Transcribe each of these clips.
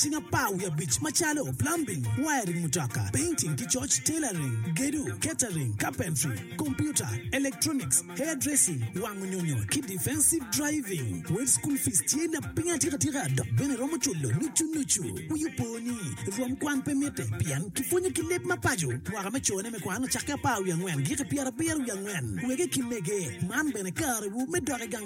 Cing apar wiye abic macalo, plumbing, wiring mutoka, painting ki coc, tailoring, gedo, catering, carpentry, computer, electronics, hairdressing, wango nyonyo, ki defensive driving. Wed school fees tye lapiny atikatika dok bene iromo culo nucu nucu. Wi opo ni, rwom kwan pe mitte pien kipwonyo ki leb ma paco. Mwaka me cone me kwan ocakke apar wiye angwen giki pyerabiro wiye angwen. Wege ki mege, man bene karewu me dok i gang.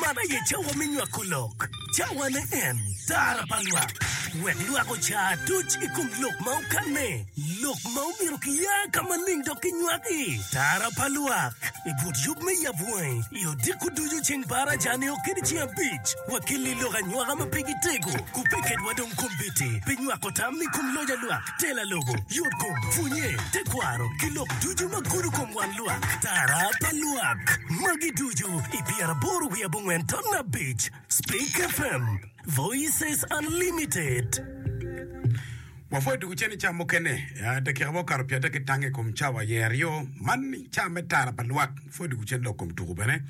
Man aye cawa me nywako lok, cawane en tara pa lwak, wek lwak oca aduc i kom lok ma okanne, lok ma omyero kiya ka maling dok kinywak i tara pa lwak. I but yub me yab wangi, i odiko ducu ceng par acane o kede ceng abic, wakelli lok anywaka ma pe gitego, ku pe ketwa dong kombeddi pi nywako tam i kom loc a lwak. Tela lobo, yotkom, pwonye, tekwaro, ki lok ducu ma gudo kom wan lwak, tara pa lwak. Magi ducu i pyeraboro wiye abongwen ton abic. Speak FM, Voices Unlimited. Wapwoyo tuku cen ica mukene, dakika ma okato pyadek ki tange ikom cawa aye aryo man ica me tara pa lwak. Wapwoyo tuku cen lok kom tuku bene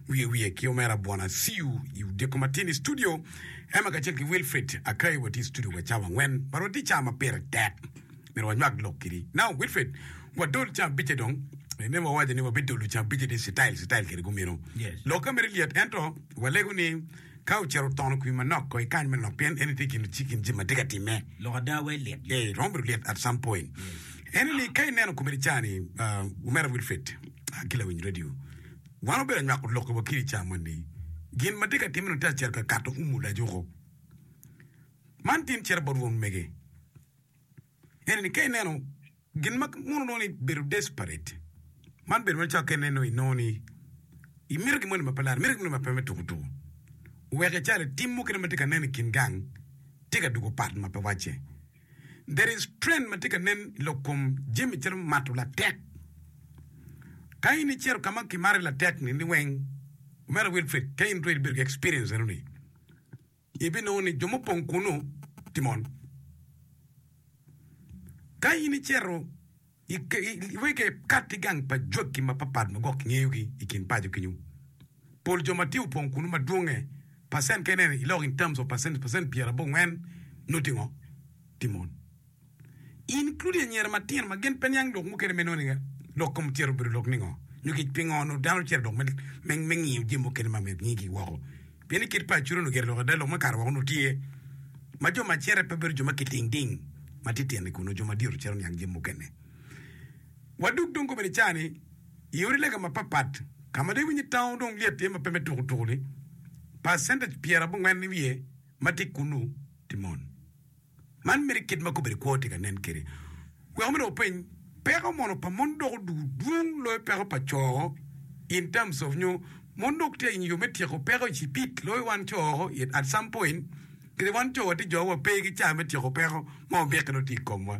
wiye wiye ki omera Bwana Siu i odiko matin i studio. Emma kacel ki Wilfrid Akay watye i studio wa cawa angwen. But watye cawa ma pire tek. Myero wanywak lok kidi. Now Wilfrid, wadol ca abice dong. Emma owaco ni wabidolo ca abice ni citayil citayil kede gumino. Yes. Lokke mere lyet ento walego ni ka ocito otono kwi manok kong ikany manok pien eni tye gin i kin jami ma tye ka timme. Lok ada wai lyet lyet. Eh, romo bedo lyet at some point. Ene ni ka ineno komiti ca ni, ah, Omera Wilfrid, ah, ki lawiny radio, Wan wabedo anywako lokke wa ki di ca moni. Gin ma atye ka timme-ni te acito ka kato umu lajuko. Man tin cito bot won mege. Ene ni ka ineno gin ma mono inongo ni bedo desperate, man bedo macalo ka ineno inongo ni imito gin moni ma pe lar, imito gin moni ma pe me tuku tuku. Wek icale tim mukene ma tye ka nen i kin gang tye ka dugo pat ma pe wacce. There is trend ma tye ka nen i lok kom jami calo mato latek. Ka in icito ka ma kimari latek ni ni weng, omera Wilfrid, ka in ture ibedo ki experience eno ni, ibinongo ni jo mupong kunu tye mon. Ka in icito. Wek ekat ki gang pa jwakki mapatpat ma gwok kingeyogi i kin paco kenyu. Pol jo ma tye opong kunu ma dwonge, percent kene i lok in terms of percentage, percent pyera bongwen nuti ngo? Ti mon. Including anyira matino ma gin pe niang lok mukene me nongo niga lok kom cito obedo lok ningo? Nyo kec pingo onongo dano cito lok me ngiyo jami mukene ma myero kingi gi woko? Pien i kit pa Acuria onongo gire lok ada, lok me kare woko onongo tye, ma jo ma cere pe bedo jo ma kiting ting, ma titino-ni kun onongo jo madito ciro niang jami mukene. Wa dog dong kobbe ni ca-ni, i odi lega mapatpat, ka ma dong iwinyo ni taun dong lyet tye ma pe me tukutuku-ni, pacentage pyerabongwen i wiye ma tye kunnu tye mon. Man meno kit ma kobedi kwo tye ka nen kwede. Wek omedde wupeny, peko mono pa mon doko dwong loyo peko pa co in terms of nyo mon dok tye in yo me tyeko peko icipid loyo wan co at some point kede wan co watye jo wa pe ki caa me tyeko peko ma wabik nongo tye ikomwa.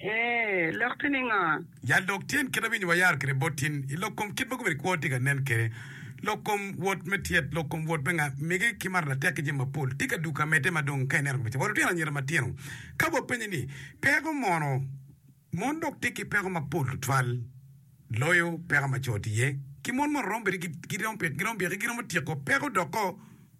Ee, lok tye ni ngo? Yal dog tyen kit ma winyi wayaro kwede bot tin i lok kom kit ma gubedo kwo tye ka nen kwede, lok kom wot me tyet, lok kom wot me nga, mege ki mato latek ki jami mapol tye ka duka medde ma dong ka ineno kabeca wa lutino anyira matino ka wapenye ni peko mono mon dok tye ki peko mapol tutwal loyo peko ma co tye iye ki mon mono romo bedo giromo peke giromo tyeko peko doko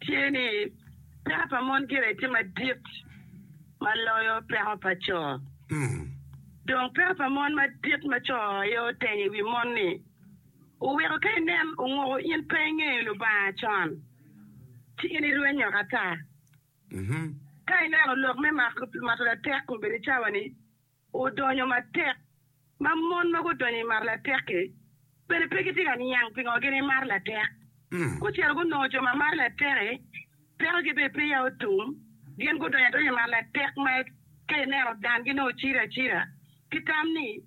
tye ni peko pa mon gire tye madit ma loyo peko pa co. Dong peko pa mon madit ma co aye otenyo i wi mon-ni oweko ka inen onguko in pe ingeyo Lubanga con, ci in irwenyo ata. Ka ineno lok me mato latek kobedi cawa-ni, odonyo matek, ma mon ma gudonyo i mar latek-ki bene pe gitye ka niang pingo gin imar latek. Gucito gunongo jo ma mar latek-ki pekogi bene peya otum, gin gudonyo adonya i mar latek ma ka ineno dangi nongo ciro acira ki tam ni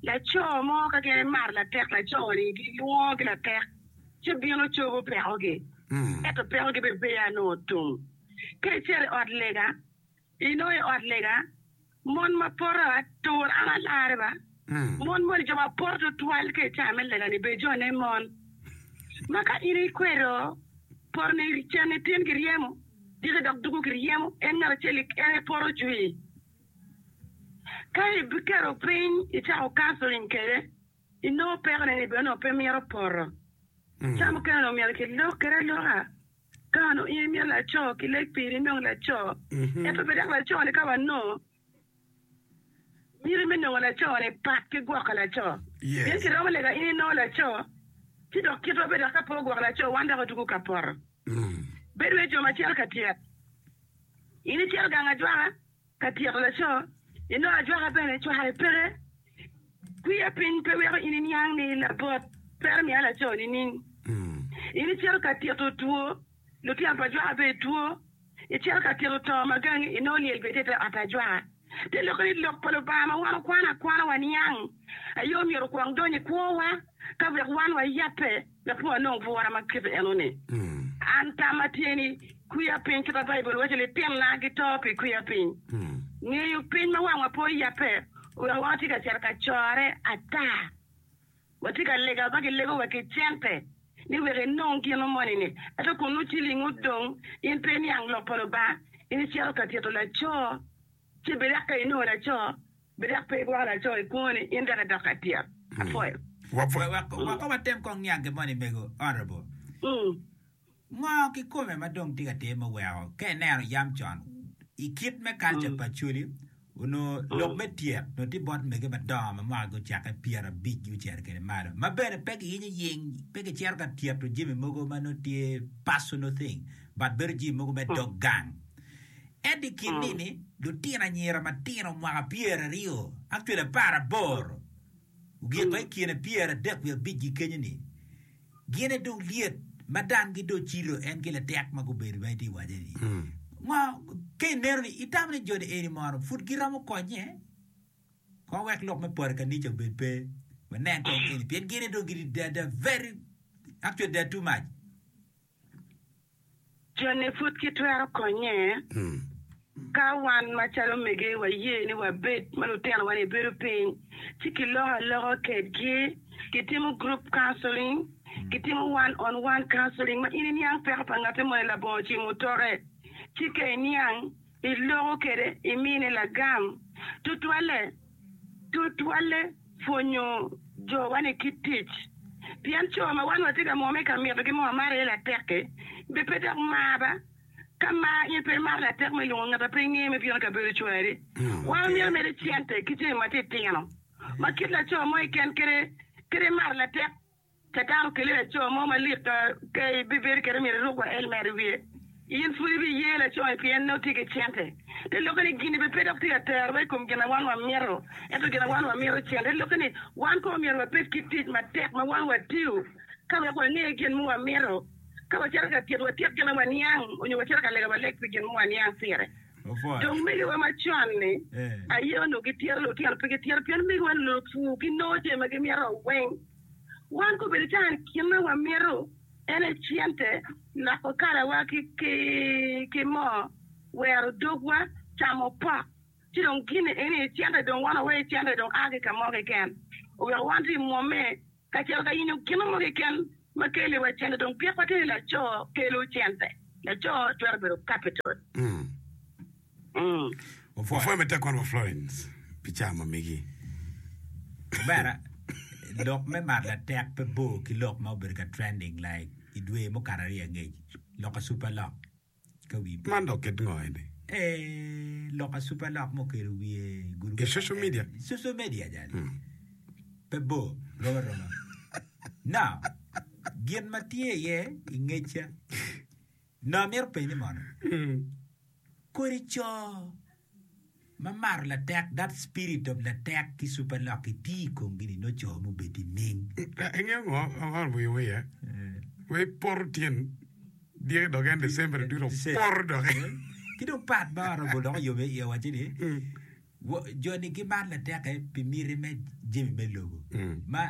laco mo ka gin imar latek laco-ni gilwongo ki latek ci bino cobo pekogi, ento pekogi bene peya nongo otum. Ka icito i ot lega, I nongo i ot lega, mon ma poto atur an alarre ba. Mon moni jo ma poto tutwal ka i caa me lega-ni bene jone mon ma ka in ikwedo potone i cen ni tin ki ryemo, dike dok dugo ki ryemo, en ngat acel en aye poto jwii. Ka ibiketo piny icako counseling kwede, inongo pekone ni bene onongo pe mito poto. Caa mukene onongo myero kilok kwede aloka. Kano, in imito laco ki lek piri inong laco, ento pe dok laco-ni ka wanongo miti me nongo laco-ni pat ki gwoko laco. Pien kiromo lega in inongo laco, ci dok kitwa pe dok ka pe ogwok laco wan dok otugo ka poto. Bedo wai jo macel ka tyet, in icel gang ajwaka. Ka tyeko laco, ilok ajwaka bene cware peke. Kwiya piny pe weko in iniang ni labot twero miya laco nining? In icito ka tito two, lutino pa ajwaka bene two, icito ka tito to ma gangi inongo lyel bene tye i te ot ajwaka. Te lokke ni Lok pa Lubanga ma wan wakwano akwana waniang aye omyero okwong donyo i kwowa ka wek wan wayabbe. Lapor anongo pwora ma kite enoni, An tamma tye ni, kwiya piny kit ma Baibul waco ni tinna gito pi kwiya piny. Ngeyo piny ma wangwa pe oyabe oweko watye ka cito ka corre ata. Watye ka lego aba ki lego wa ki cente ni wek inong gino moni ni, ento kun nongo ciling odong, in pe iniang Lok pa Lubanga, in icito ka tito laco. Ci birak ka inongo laco, birak pe igwoko laco i kwoni, in dok idok atyet. Apwoyo. Weko watem kong niange moni mego, Honourable. Ngo kikome ma dong tye ka time oweko ka ineno yam con i kit me culture pa Acholi onongo lok me tyet onongo tye bot mege madongo ma mwaka gucakke pyera abic gucito kede malo ma bene pe giyinyo ying pe gicito ka tyeto jami mogo ma nongo tye personal thing but bedo jami mogo me dog gang. Ento i kin nini, lutino anyira matino mwaka pyeraryo ki lapar aboro ogiko i kine pyeradek wiye abicgi kenyo-ni, gin aye dong lyet ma dang gidong gicito en ki latek ma gubedo ma itye ka waco-ni. Ngo ka ineno ni itamo ni jo-ni eni mono pud giromo konye? Kong wek lok me poto i kanica obed pe. Wanen kong eni, pien gin aye dong gitye, they are very, actually they are too much. Joni pud kitwero konye ka wan macalo mege waye ni wabed ma lutinowa ni bedo piny ci kiloko aloka kedgi, kitimo group counseling, kitimo one on one counseling ma in iniang peko pa ngatte moni labongo ci mutoke ci ka iniang iloko kwede imine lagam. Tutwalle, tutwalle pwonyo jowa-ni kit tic. Pien co ma wan watye ka mwomme ka mitogi ma wamaro iye latek-ki, be pe dok mar ba? Ka mar in pe imaro latek me lwongo ngat a pe ingeye me bino i kabedo cwari, wan omyero omedi cente ki jami matitino ma kit laco mo i ken kede imaro latek? Ka dako keli laco mo malik ka kayi bibedo kit omyero iruk wa elmet i wiye. In pud ibi ye laco-ni pien nongo tye ki cente. Te lokke ni gin-ni bene pe dok tye ka tero wa i kom gin ma wan wamito, ento gin ma wan wamito cente. Te lokke ni wan kono omyero wabed ki tic matek ma wan watiyo ka wek wange gin ma wamito. Ka wacito ka tyet, watyek gin ma waniang onyo wacito ka lega, waleg pi gin ma waniang pire. Dong megiwa macon-ni aye onongo gitito lutino pigi tito pien megiwa-ni onongo pur, ginongo jami ma gimito weng. Wan ka obedo calo gin ma wamito en aye cente, loko kalawa ki moo, wero dogwa, camo pot, ci dong gin eni aye cente dong wan waweyo cente dong a ki ka mo keken oweko wan dong mwomme kacel ka yenyo gin mo keken ma keliwa cente dong pekwa kit ni laco kelo cente, laco twero bedo capital. Wapwoyo matek kwano wa Florence pi cawa ma migi. Omera, lok me mar latek pe bor ki lok ma obedo ka trending like i dwe mukato aryo angec, loka super lock ka wi po. Man dok kit ngo eni? Ee, loka super lock ma okedo wiye i gurup. I social media? I social media jali. Pe bor, rom aroma. Now, gin ma tye iye i ngecca. Nongo amito penyi mono, kodi co ma mato latek, that spirit of latek ki super lock-ki tye i komgi ni nongo co ma obed ki ning? Ingeyo ngo out of your way eh? Wai poto tyen dyegi dok en December dwe dong poto dok eh? Ki dong part ma oromo loko yom iye waco ni jo ni gimato latek eh pi miti me jami me lobo ma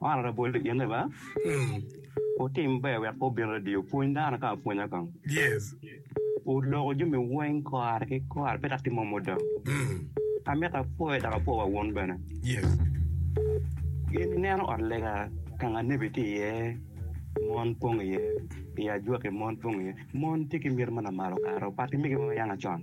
Man aye bol i ine ba. Wutim ber wek pe wubin radio. Pwony dano ka apwonya kong. Wuloko jami weng kare ki kare pe dok timo muda. Amito apwoyo dok apwo wa wun bene. Gin ineno ot lega ka nga nebi tye iye mon pong iye, i ajwaki mon pong iye. Mon tye ki miti ma namalo kare opat ki mege ma wayanga con.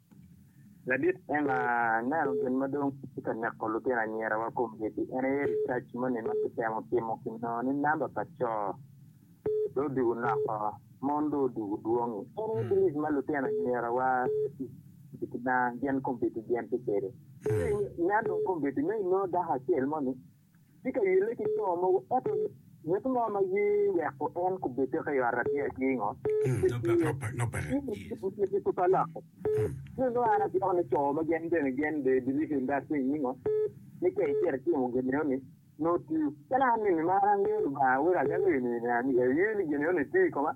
Ladit en aneno gin ma dong tye ka neko lutino anyirawa komgigi. En aye research moni ma kitemo timo kinongo ni namba pa co dong odwogo nok oo, mon dong odwogo dwong i. En aye believe ma lutino anyirawa gin komgigi gin tye kwede. Nya dong komgigi nongo inongo dako acel moni tye ka yelle ki co mogo, ento ngat mo ma ye weko en kobed doki i ot Abia tye ngo? Ngat-ti pe pe lokke. Ci onongo an agwoko ni co ma gin bene gin be biripe industry ni ngo, ni ka icito itimo gin eno ni, nongo tiyo. Calo an ni nimar angeyo Lubanga wek adagi nino ni aye ni gin eno ni tiyo i koma,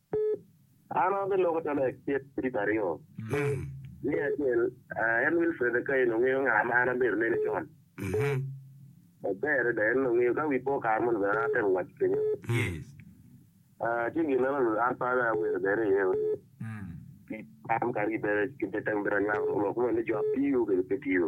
An abeloko calo acel ki tipo aryo me acel, en Wilfred Akai onongo ngeyo nga ma an abedo nene con maber adada. En onongo ngeyo ka wi po kare moni bene an atemo waco kenyo ci gin meno onongo an pe awero bene iye pi tam kadi bene ki pe temo bene anywako lok moni ni jo apiyo kede pe tiyo.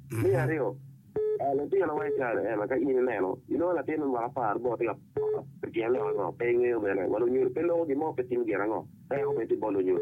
Me aryo, litino ma icayo ema ka in ineno inongo latin me mwaka apar bot tye ka pe gin lok ango, pe ingeyo bene wa lunyodo pe loko gin mo pe timo gin ango en aye obedo bot lunyodo.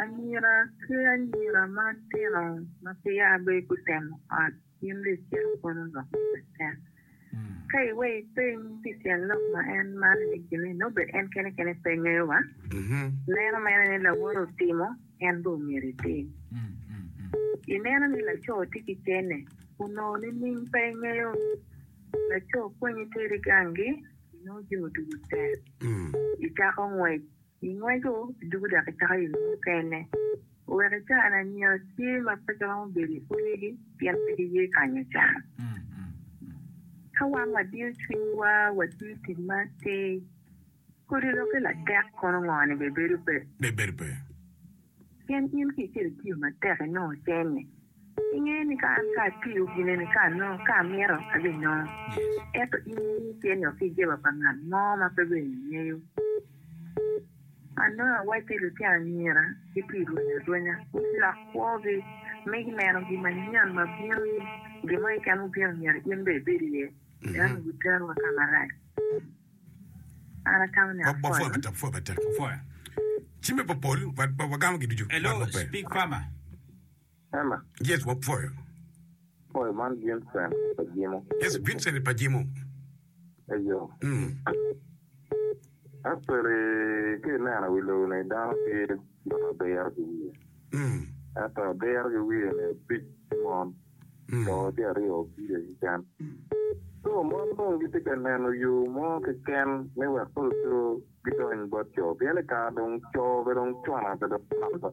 Anyira ki anyira matino ma peya bene gutemo ot gin ryecen kono lok ma Catan. Ka iweyo ipeny pi tyen lok ma en maro-ni kine, nongo bene en kene kene pe ngeyo wa, neno mene ni lawote otimo en bene omyero etim. Ineno ni laco tye ki cene, onongo nining pe ingeyo? Laco kwenyi teri gangi Inongo jo ducu tek. Icako ngwec, ingweco ducu dok icako yo mukene. Wek ica lanyira tye ma peke romo bedo i utigi pien pe giye kanyo can. Ka wan wadiyo cwinywa, watiyo tic ma atir, kodi lokke latek kono ngo-ni bene bedo pe. Pien in ki icito itiyo matek inongo cene. Ingeyo ni ka an pe atiyo gine ni ka anongo, ka amito, abinongo. Ento in iye tye ni oki jeba pa ngat mo ma pe bene ingeyo. Anongo awaco ni lutino anyira gitye rwenyo arwenya, gulok kwogi, me gineno gin manyen ma bino ni, gin mo keken mubino myero in bene ibed iye, ento ni guterowa ka marac. An atamo ni apwoyo. Hema. Yes, wapwoyo. Pwoyo man Vincent pa Jimo. Yes, Vincent pa Jimo. Eyo. Mm. Actually, ki ineno wi lobo ni dano tye ma diro ki wiye. Mm. Ento diro ki wiye ni opic ki mon. Mm. Co tye aryo opire keken. Co mon dong gitye ka neno yo mo keken me wek pe oco gidony bot co. Pien i kare dong co pe dong cwana pe dong mako.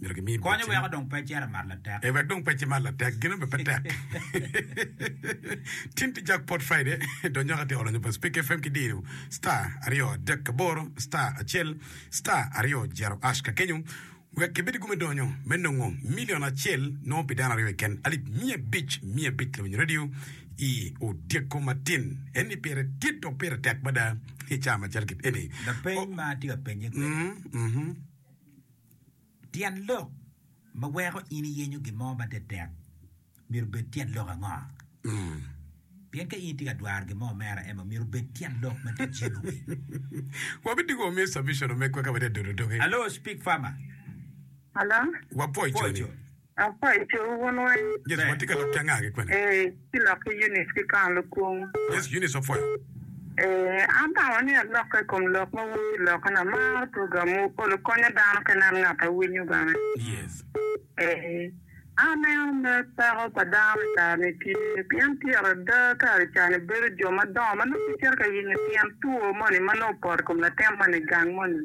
myero gimi bocci. Konye weko dong pe cito mat latek. Ee, wek dong pe cimat latek. Gin abe pe tek. Tin tye Jackpot Friday, to nyoka tye ka lonyo pa Speke FM ki diyo star aryo adek aboro star acel star aryo jero ash ka kenyo wek kibed i gume donyo me nongo milion acel nongo pi dano aryo keken alip miya abic miya abic lawinyo radio i odyeko matin eni pire dit dok pire tek mada i caa macel kit eni. Lapeny ma atye ka penye kwede. Mm, mhm. Tyen lok ma weko in iyenyo gin mo ma tektek myero obed tyen lok ango? Pien ka in itye ka dwaro gin mo mere, ema myero obed tyen lok ma tye cen wi. Wabitigo wamiyo submission omegwa ka watye ka dodo doge. Alo, Speak Farmer. Alo. Wapwoco ni. Pwoco. Apaco wun weng. Yesu, watye ka lok ki anga ki kwene? Ee, ci lok ki Eunice ki Kang Lukung. Yesu, Eunice opwoyo. Ee, atamo ni alokke i kom lok ma wun giloko. An amaro program wu, olo konyo dano ka inen ngat a winyo bene. Yes. Ee, aneno mer peko pa dano i kare ni tye, pien tyero ada kare ca ni bedo jo madongo ma nongo gicito ka yenyo tyen two moni ma nongo opoto i kom latin moni gang moni.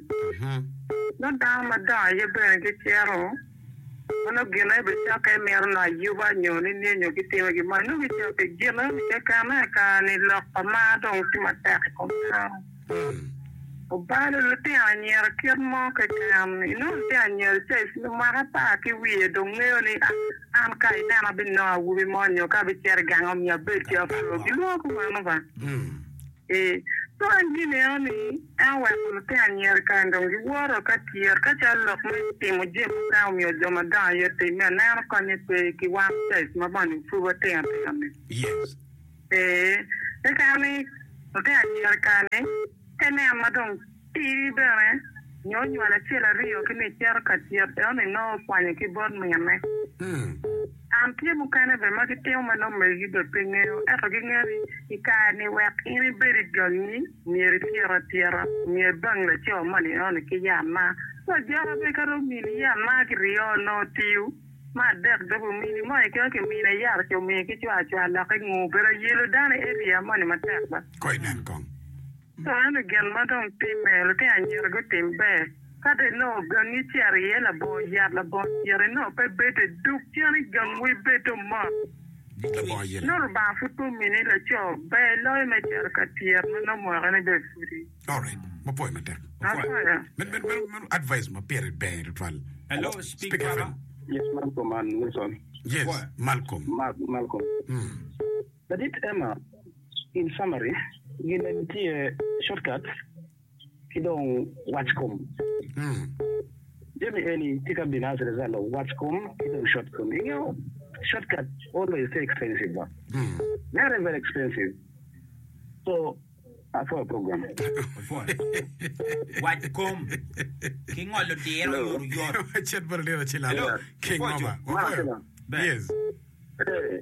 Nongo dano madongo aye bene gicito. Meno gine bicakke mito ni ayuba nyo ni nyenyo gitime gin mo nyo gicoyo pi gin keken aye kare-ni lok pa mar dong tye matek i kom dano. Obalo lutino anyira kit mo keken. Inongo lutino anyira ca ecwinyo mwaka apar ki wiye dong ngeyo ni an ka inena abinongo awobi mo nyo ka abicito i gang omyero abed ki apur. Gilwongo ki meno ba. Ee, co en gin eno ni en oweko lutino anyira kany dong giworo ka tyero ka calo lok ma timo jemo mukene omiyo jo madongo aye timme anena konye pe ki wan caij ma bene pud watino tino ni. Yes. Ee, keken ni lutino anyira kany ni ka ineno ma dong. Tidi bene, nyo onywalo acel aryo ki ni cito ka tyet eno ni nongo okwanyo ki bot minne. An tye mukene bene ma gitimo ma nongo megigi bene pe ngeyo ento gingeyo ni i kare ni wek in ibed i gangi myero ityet atyeta, omyero ibang laco moni eno ni ki yat ma wa joko bene ka dong omini yat ma ki ryo nongo tiyo ma adek dong omini moni kino ki mine yat ci omiyo ki cwacwa lok ingu bedo ayelo dano i area moni matek baa. Ka eno gin ma dong timme, lutino anyira gutim ber. Ka dong inongo gangi icito iye labongo yat, labongo tyene inongo pe bede, dug cen i gang wa ibed dong mot. Nongo Lubanga pud pe omini laco ber loyo me cito ka tyet ma nongo mwaka ne bene pudi. Apwoyo. Ladit Emma, In summary, gin eni tye shortcuts ki dong wac kom. Jami eni tye ka bino as a result of wac kom ki dong short kom. I ngeyo shortcut always tye expensive ba? Very very expensive. So apwoyo program. Wac kom ki ngolo diro Hello. yot yot. Chet bene diro ci lalo. Hello. King Pwoco. Mama. Mara Apwoyo. kila. Bene. Yes. Eh.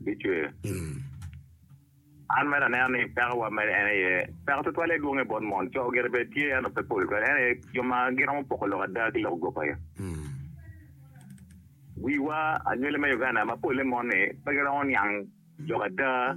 bicwer. An mere aneno ni pekowa mere en aye peko twatwal aye dwonge bot mon. Co gire bene tye ento pe pol kwede en aye jo ma giromo poko lok ada ki lok goba aye. Wiwa anywele me Uganda ma pole mon ni pe giromo niang lok ada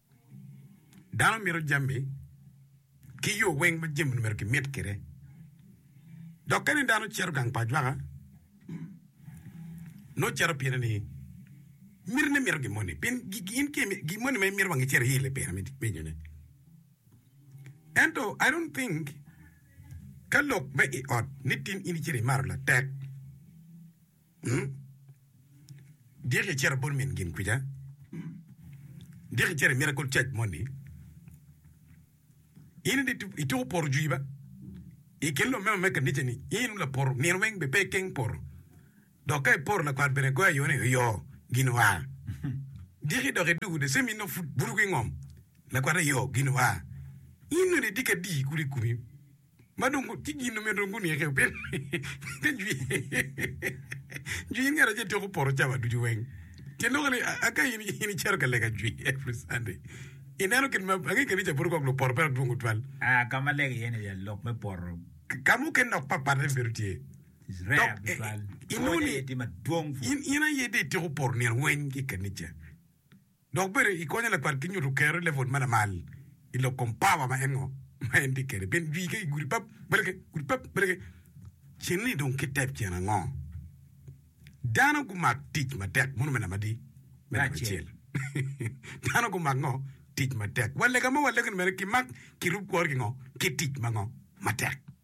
Dano mito jami ki yo weng ma jami omyero kimit kwede. Dok kadi dano ocito gang pa ajwaka, nongo cito pire ni mitine mito gin moni pien gin moni ma imito wang icito iye i pire me nyome. Ento I don't think ka lok me i ot ni tin in icito imato latek. Dyek icito bot min gin kwica, dyek icito i Miracle Church moni, in ni ituko poro juiba i kin lumema me kanicani, in laporo nino weng bene pe ikeng poro, dok ka iporo lakwat bene goyo ayo ni oyo gin oa. Dyek idok idugu the same in nongo pud buto ki ngom lakwat ayo gin oa. In nongo idiki adii kulu i komi ma dong tye gin omyero guneke pien jwi in ngat acel tyeko poto cawa ducu weng ci loko ni aka in in icito ka lega jwi every Sunday ineno kit ma ange kanica pud kong lupoto peya dwong tutwal Ah, ka ma lega iye ni ya lok me poto ka mukene dok papate bedo tye rare Dok, eh, tutwal. inoni- Pwony aye tye madwong pur. in in aye dong ityeko poto nino weng ki kanica Dok bene ikonyo lakwat ki nyuto kero i level ma lamal i lok kom power ma en ngo ma en tye kede pien jwi ke i gudi pap bale ke gudi pap bale ke cen ni dong ki tep cen ango dano gumak tic matek mono me namba adi me namba acel dano gumak ngo tic matek wa lega mo wa lego ni mene ki mak ki rub kwori ki ngo ki tic ma ngo matek.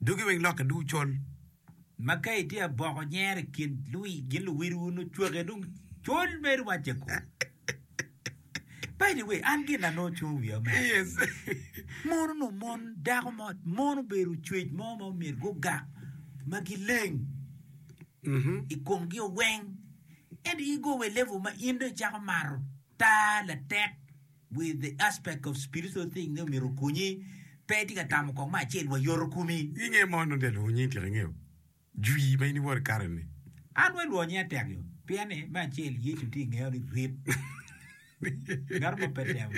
Dogi weng lokke ducu col, ma ka itye aboko nyero i kin gin luwilwu nongo cwake dong col mere wacce ko. By the way, an gin na nongo cungo wiya omera Yes. mono nongo mon dako mo mon obedo ocwec mo ma myero gugak ma gileng Mhm. i komgi oweng ento igo wa i level ma in dong icako mato taa latek With the aspect of spiritual thing ni omyero okonyi, pe itye ka tamo kong me acel wa yoto komi. Inge mo nongo ja lwongo nying tika ingeyo jwi ma in iwor i kare ni. An we ilwongo nyinga tek yo pien ni me acel yecu tye ingeyo ni rit gato mo pe temo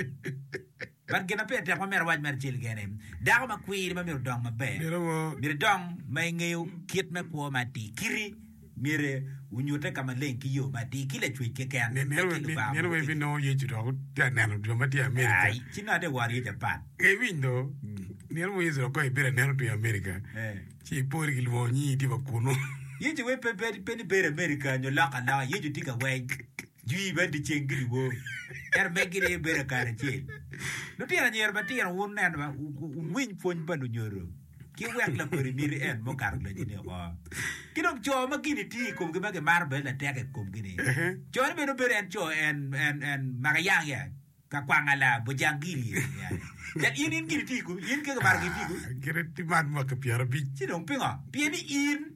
but gin ma pire tek ma myero awac mere acel keken ni dako ma kwiri ma myero odong maber myero idong ma ingeyo kit me kwo ma atir kiti. Myero wunyute ka maleng ki yo matir ki lacwec keken, eka ki Lubanga mogo bene. Myero wubinongo Yecu dok wutye ka neno jo ma tye i Amerika. Ai, ci nongo ate woro ye Japan. Ka iwiny dho nino mo Yecu dok ka ibedo anena otwero Amerika, ci ipori ki lwongo nyingi itye wa kunu. Yecu we pe bed pe ni bedo Amerika nyo lok aloka. Yecu tye ka weny jwi bene dyeceng ki dyewor, ento megi gin aye bedo kare acel. Lutino anyira matino, wuneno ma, wuwiny pwony pa lunyodo. ki wek lakodi miti en me okato lacine oko. Ki dong co ma gini tye i komgi ma gimaro bedo latek i komgi-ni, cone bene obedo en co en en en makayang ya ka kwanga la bojangili ya yani. Cal in in gini tye i komi, in keke maro gini tye i komi. Gire ti man mwaki pyerabic. Ci dong pingo? Pien ni in